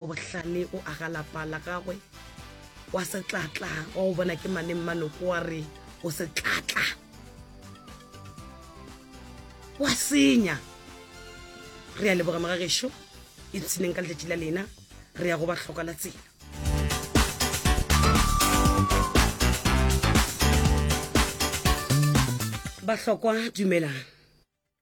Bohlale o aga lapa la gagwe kwa Setlatla. Wa go bona ke mane Mmanoko wa re o Setlatla. Wa senya. Re a leboga magagesho e tshineng ka letšatši la lena re ya go ba hloka la tsela. Bahlokwa dumelang.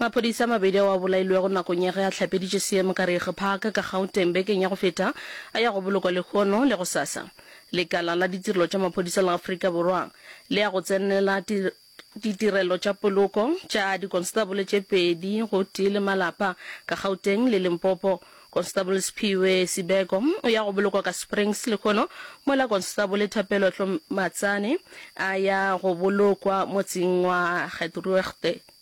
Maphodisa a mabedi ao a bolailwego nakong ya ge a hlapeditše seemo ka Reege Park ka Gauteng bekeng ya go feta a ya go bolokwa lehono le gosasa. Lekala la Ditirelo tša Maphodisa la Afrika Borwa le ya go tsenela ditirelo tša poloko tša dikonstabole tše pedi gotee le malapa ka Gauteng le Limpopo. Konstabole Sphiwe Sibeko o ya go bolokwa ka Springs lehono mola Konstabole Thapelo Hlomatsane a ya go bolokwa motseng wa Gethruegte.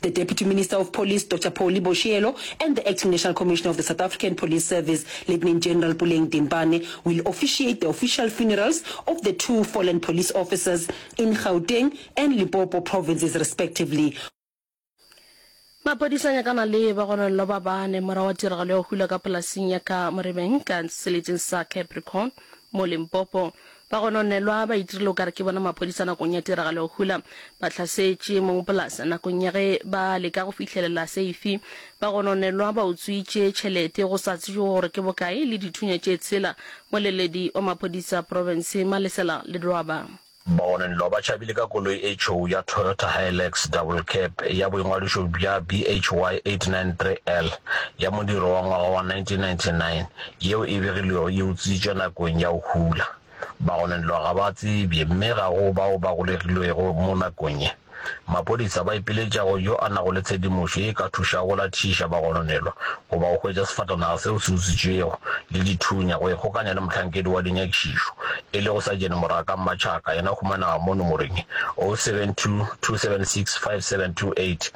the Deputy Minister of Police, Doctor Polly Boshielo, and the Acting National Commissioner of the South African Police Service, Lieutenant General Puleng Dimpane, will officiate the official funerals of the two fallen police officers in Gauteng and Limpopo provinces respectively. Maphodisa a nyakana le bagononelwa ba bane morago ga tiragalo ya go hula ka polasing ya Ka Morebeng ka seleteng sa Capricorn mo Limpopo. Ba gononelwa ba itirile o ka re ke bona maphodisa nakong ya tiragalo ya go hula. Ba hlasetše mong polase nakong ya ge ba leka go fihlelela seifi. Ba gononelwa ba utswitše tšhelete go sa tsejwe gore ke bokae le dithunya tše tshela. Moleledi wa maphodisa profenseng Malesela Ledwaba. Ba gononelwa ba tšhabile ka koloi e tšhou ya Toyota Hilux Double Cab ya boingwadišo bja BHY 893L ya modiro wa ngwaga wa 1999 Yeo e begilwego e utswitšwe nakong ya go hula. Bagononelwa ga ba tsebje mme ga go bao ba golegilwego mo nakong ye. Maphodisa ba ipiletša go yo a nago le tshedimošo ye e ka thušago go lathiša bagononelwa goba go hwetša sefatanaga seo se utswitšwego le dithunya go ikgokanya le mohlankedi wa dinyakišišo e lego Sajene Moraka Mmatšhaka yena humanaga mo nomoreng 0722765728.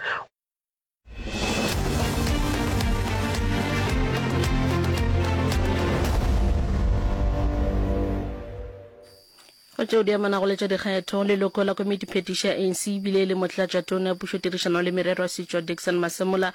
go tšeo di amanago le tša dikgetho leloko la komiti phetiši ya anc ebile e le motlatšatona ya pušotirišano le merero ya setšwa dixon masemola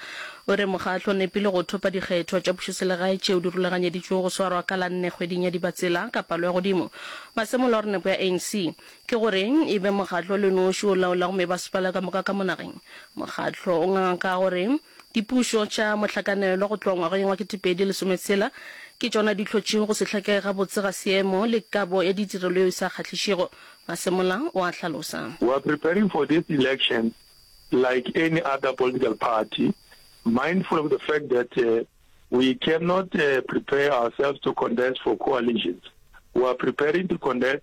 o re mokgatlo o nepile go thopa dikgetho tša pušoselegae tšeo di rulaganyeditšwego go swarwa ka la nne kgweding ya dibatsela ka palo ya godimo masemola o re nepo ya anc Ke goreng e be mokgatlo o le noši o laolago mebasepala ka moka ka mo nageng? Mokgatlo o nganga ka gore dipušo tša mohlakanelo go tloga ngwageng wa ketepedi lesometshela ke tšona di hlotšego go se hlakege gabotse ga seemo le kabo ya ditirelo yeo e sa kgahlišego, Masemola o a hlalosa. We are preparing for this election like any other political party, mindful of the fact that we cannot prepare ourselves to contest for coalitions. We are preparing to contest.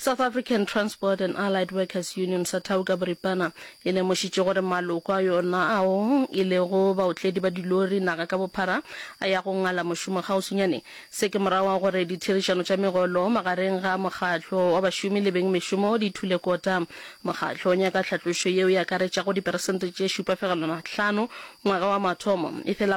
South African Transport and Allied Workers Union, Sathau ka boripana, e lemošitše gore maloko a yona ao e lego baotledi ba dilori naga ka bophara a ya go ngala mošomo kgauswinyane. Se ke morago ga gore ditherišano tša megolo magareng ga mokgatlo wa bašomi le beng mešomo di thule kota. Mokgatlo o nyaka tlhatlošo yeo e akaretšago diperesente tše šupa fegelwana hlano ngwaga wa mathomo, efela